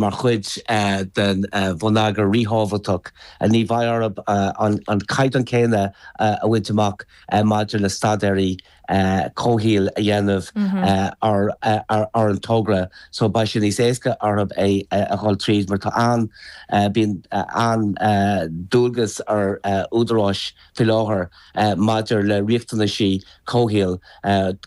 mar chuid den bhonneagar ríthábhachtach ní bheidh orthu an caighdeán céanna a bhaint amach maidir le staidéaraí comhshaoil a dhéanamh ar an togra so beidh sé níos éasca orthub é a ghoil tríd mar tá an, bíonn an, dualgas ar údaráis faoi láthair maidir le riachtanaisí comhshaoil,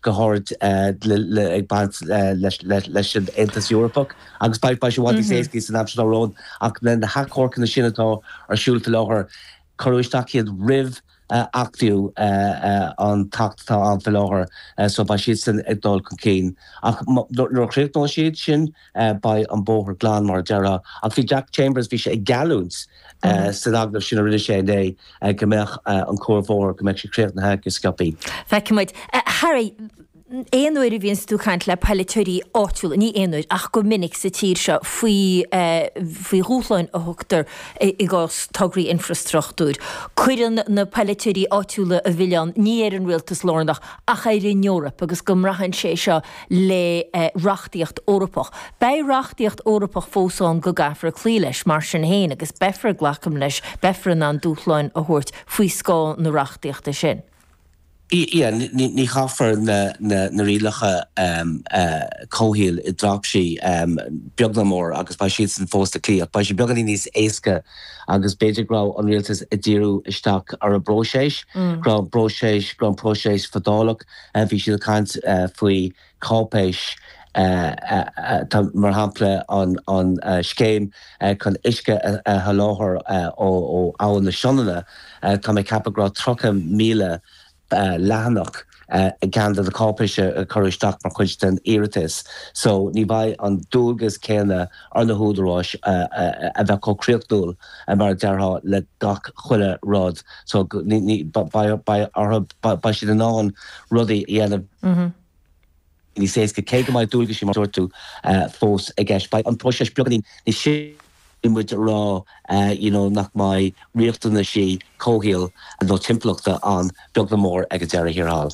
go háirid ag baint leis an Aontas Eorpach, agus beidh sé i bhfad níos éascaí san am atá romhainn. Ach na hachomharcanna sin atá ar siúl faoi láthair, cuireadh isteach iad roimh achtú an tAcht atá ann faoi láthair, so beidh siadsan ag dul chun cinn. Ach nuair a chríochnóidh siad sin, Beidh an bóthar glan mar a déarfá. Ach bhí Jack Chambers, bhí sé ag geallúint san agallamh sin a rinne sé inné go mbeadh an cuarbhóthar, go mbeadh sé críochnaithe go sciobthaí. Feicfidh muid. Harry, aon uair a bhíonn tú ag caint le polaiteoirí áitiúla, ní aon uair ach go minic sa tír seo, faoi dhúshláin a thugtar i gcás tograí infreastruchtúir, cuireann na polaiteoirí áitiúla an milleán ní ar an rialtas lárnach ach ar an Eoraip agus go mbaineann sé seo le reachtaíocht Eorpach. Beidh reachtaíocht Eorpach fós ann go gcaithfear cloí leis, mar sin féin, agus beifear, glacaim leis, beifear in ann dúshláin a thabhairt faoi scáth na reachtaíochta sin. Sea, ní chaithfear na rialacha comhshaoil i dtraipisí, beag ná mór, agus beidh siadsan fós le cloí, ach beidh sé beagáinín níos éasca agus b'fhéidir go raibh an rialtas ag díriú isteach ar an bpróiseas, go raibh an próiseas, go raibh an próiseas fadálach. Bhí siad ag caint faoi cháipéisí, mar shampla, an scéim chun uisce a sholáthar ó Abhainn na Sionainne. Tá mé ag ceapadh go raibh 30,000 leathanach i gceann de na cáipéisí a cuireadh isteach mar chuid den iarratas. So, ní bheidh an dualgas céanna ar na húdaráis a bheith chomh críochnúil mar a déarfá le gach chuile rud so beidh orthu, beidh siad in ann rudaí a dhéanamh níos éasca, cé go mbeidh dualgaisí mar a dúirt tú fós i gceist. Beidh an próiseas beagáinín níos sia, caithfidh muid a rá. you know nach mbeidh riachtanaisí comhshaoil nó timpeallachta ann beag ná mór ag an deireadh thiar thall.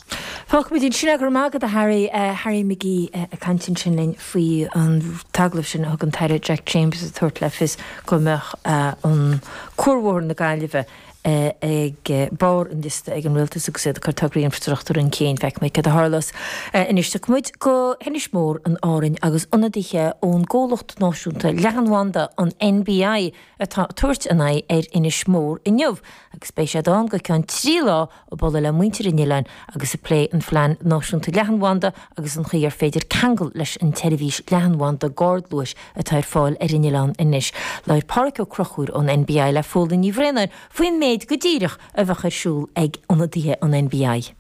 Fágfaimid é ansin. Go raibh maith agat, a Harry. Harry McGee ag caint ansin linn faoi an agallamh sin a thug an tAire Jack Chambers ag tabhairt le fios go mbeadh cuarbhóthar na Gaillimhe ag barr an liosta ag an rialtas agus iad ag cur tograí infreastruchtúir chun cinn. Feicfidh muid céard a tharlós anois. Tiocfaidh muid go hInis Mór in Árainn agus ionadaithe ón gcomhlacht náisiúnta leathanbhanda, an NBI, atá ag tabhairt a n-aghaidh ar Inis Mór inniu agus beidh siad ann go ceann trí lá ag bualadh le muintir an oileáin agus ag plé an phlean náisiúnta leathanbhanda agus an chaoi ar féidir ceangal leis an tseirbhís leathanbhanda gardluais atá ar fáil ar an oileán anois. Labhair Pádhraic Ó Crochúir ón NBI le Fódhla Ní Bhraonáin faoin méid go díreach a bheadh ar siúl ag ionadaithe an NBI.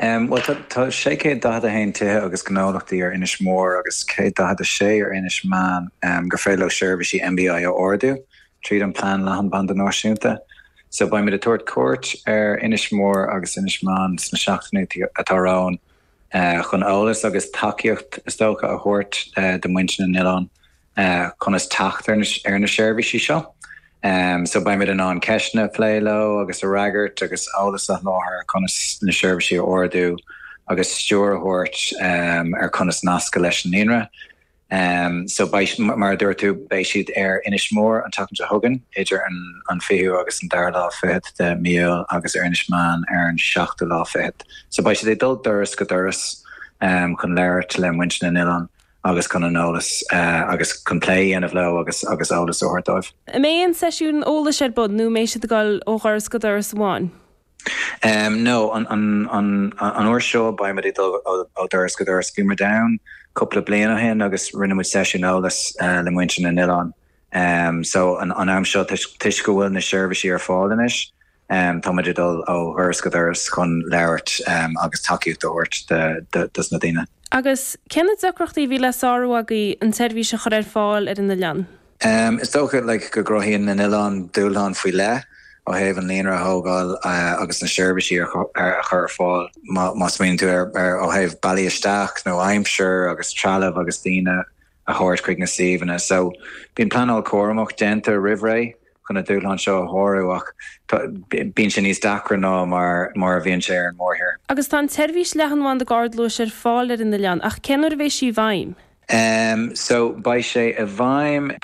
Bhuel tá 641 tithe agus gnólachtaí ar Inis Mór agus 146 ar Inis Meáin gur féidir leo seirbhísí NBI a ordú tríd an Plean Leathanbhanda Náisiúnta. So beimid ag tabhairt cuairt ar Inis Mór agus Inis Meáin sna seachtainí atá romhainn. chun eolas agus tacaíocht is dócha a thabhairt do muintir na n-oileán conas teacht ar na seirbhísí seo. So beimid in ann ceisteanna a phlé leo agus a fhreagairt agus eolas a sholáthar conas na seirbhísí a ordú agus stiúir a thabhairt ar conas nascadh leis an líonra. Em, so beidh, mar a dúirt tú, beidh siad ar Inis Mór an tseachtain seo chugainn, idir an, an fichiú agus an dara lá fichead de Mí Iúil agus ar Inis Meáin ar an seachtú lá fichead. So beidh siad ag dul doras go doras, em, chun labhairt le muintir na n-oileán agus chun an eolas, eh, agus chun plé a dhéanamh leo agus, agus eolas a thabhairt dóibh. An mbeidh aon seisiún eolais ar bun nó mbeidh siad ag dul ó dhoras go doras amháin? No, an uair seo beidh muid ag dul ó dhoras go doras. Bhí muid ann cúpla bliain ó shin agus rinne muid seisiún eolais le muintir na n-oileán. So, an am seo, toisc go bhfuil na seirbhísí ar fáil anois, tá muid ag dul ó dhoras go doras chun labhairt agus tacaíocht a thabhairt dos na daoine. Agus cé na deacrachtaí a bhí le sárú agaibh an tseirbhís a chur ar fáil ar an oileán? Is dócha go gcruthaíonn na n-oileán dúshláin faoi leith ó thaobh an líonra a thógáil agus na seirbhísí a chur ar fáil. Má smaoiníonn tú ar ó thaobh bealaí isteach nó aimsir agus trealamh agus daoine a thabhairt chuig na suíomhanna so bíonn pleanáil cúramach déanta roimh ré chun na dúshláin seo a shárú ach bíonn sé níos deacra ná mar a bhíonn sé ar an mórthír. Agus tá an tseirbhís leathanbhanda gardluais ar fáil ar an oileán ach cén uair a bheidh sí i bhfeidhm? So beidh sé i bhfeidhm.